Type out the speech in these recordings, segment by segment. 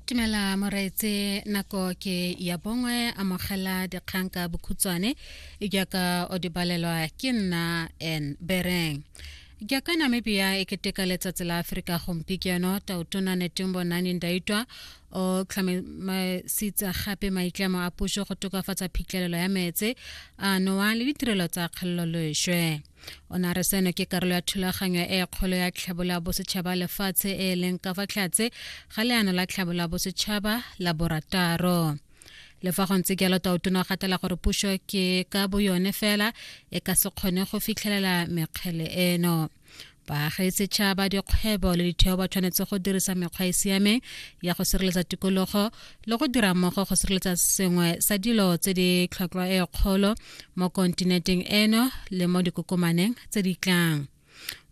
tumela moreetse nako ke ya bongwe amogela dikgang ka bokhutswane jaaka o di balelwa ke nna n bereng jaaka namibia e keteka letsatsi la aforika gompieno taotona netumbo nani ndaitwa o tlhomamisitse gape maitlamo a puso go tokafatsa phitlhelelo ya meetse a nowa le ditirelo tsa kgolololeswe o ne a re seno ke karolo ya thulaganyo e kgolo ya tlhabola bosetšhaba lefatshe e e leng ka fa tlhatse ga leano la tlhabola bosetšhaba la borataro le fa go ntse jalo taotona o gatela gore puso ke ka boyone fela e ka se kgone go fitlhelela mekgele eno baagi setšhaba dikgwebo le ditheo ba tshwanetse go dirisa mekgwa e siameng ya go sireletsa tikologo le go dira mmogo go sireletsa sengwe sa dilo tse di tlhotlhwa e kgolo mo kontinenteng eno le mo dikokomaneng tse di tlang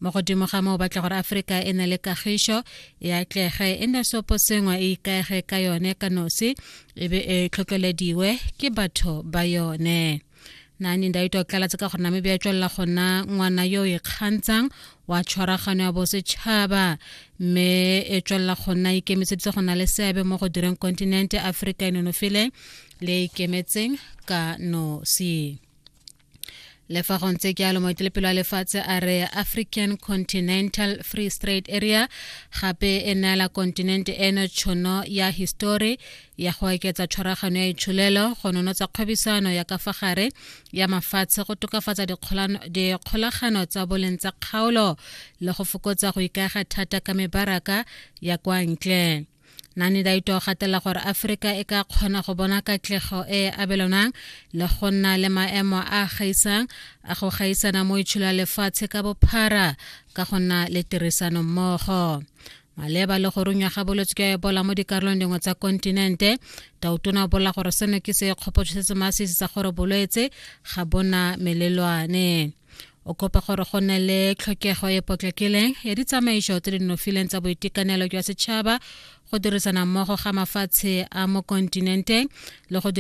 mo godimo ga moo batla gore aforika e ne le kagišo e atlege e ne sopo sengwe e ikaege ka yone ka nosi e be e tlhotlhelediwe ke batho ba yone nani ndaito a tlalatse ka gore namibia e tswelela gona ngwana yo o ikgantshang wa tshwaragano ya bosetšhaba mme e tswelela gona ikemiseditse go na le seabe mo go direng kontinente aforika e nonofileng le e ikemetseng ka nosi le fa go ntse ke a lomoetelepelo a lefatshe a re african continental free straight area gape e neela kontinente eno tšhono ya histori ya go oketsa tshwaragano ya itsholelo go nonotsa kgwebisano ya ka fa gare ya mafatshe go tokafatsa dikgolagano tsa boleng tsa kgaolo le go fokotsa go ikaega thata ka mebaraka ya kwa ntle nane daito o gatela gore aforika e ka kgona go bona katlego e e abelonang le go nna le maemo a gaisang a go gaisana mo itsholo ya lefatshe ka bophara ka go nna le tirisano mmogo maleba le go runywa ga bolwetse jwa ebola mo dikarolong dingwe tsa kontinente tautona o bolela gore seno ke se kgopotso se se masisi sa gore bolwetse ga bona melelwane o kopa gore go nne le tlhokego e potlakileng ya ditsamaiso tse di nofileng tsa boitekanelo jwa setšhaba go dirisana mmogo ga mafatshe a mo kontinenteng le go